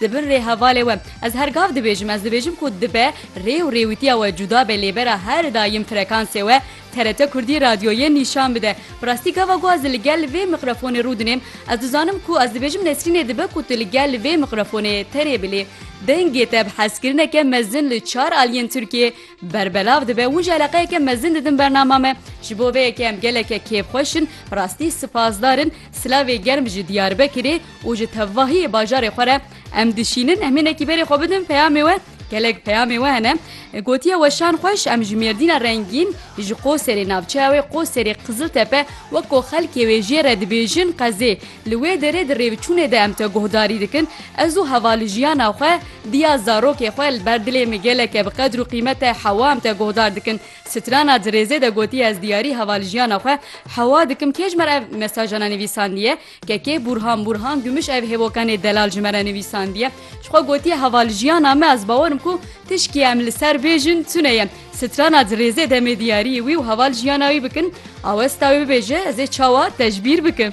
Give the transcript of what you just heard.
Di bin rê hevalê we ez her gav dibêjim, ez dibêjim ku dibe rê û rêwîtiya we cuda be lê bera her dayim frekansê we TRT Kurdî radyo yê nîşan bide. Bi rastî gava ku ez li gel vê miqrefonê rû dinêm ez dizanim ku ez dibêjim Nesrînê dibe ku tu li gel vê miqrefonê terê bi lê dengê te bi hezkirineke mezin li çar aliyên Tirkiyê berbelav dibe hûn jî eleqeyeke mezin didin bernama me ji bo vê yekê em geleke kêfxweş in bi rastî sipasdar in silavê germ ji Diyarbekirê û ji tevahiyê bajarê xwe re em dişînin em hinekî berê xwe bidin peyamê we gelek peyamê we hene gotiye weşan xweş em ji mêrdîna rengîn ji qoserê navçeya wê qoserê qiziltepe weko xelkê wê jê re dibêjin qezê li wê derê di rêvçûnê de em te guhdarî dikin ez û heva li jiyana xwe diya zarokê xwe li ber dilê min geleke bi qedr û qîmete hewa em te guhdar dikin strana di rêzê de gotiye ez diyarî heva li jiyana xwe hewa dikim kê ji me re ev mesajana nivîsandiye KK, Bûrhan Bûrhan Gumuş ev hêvokanê delal ji me re nivîsandiye. Ji xwe gotiye heva li jiyana me ez bawer im ku tişkî em li ser bêjin tune ye. Strana di rêzê demê diyariyê wî û heva li jiyana wî bikin, awesta wê bibêje ez ê çawa tecbîr bikim.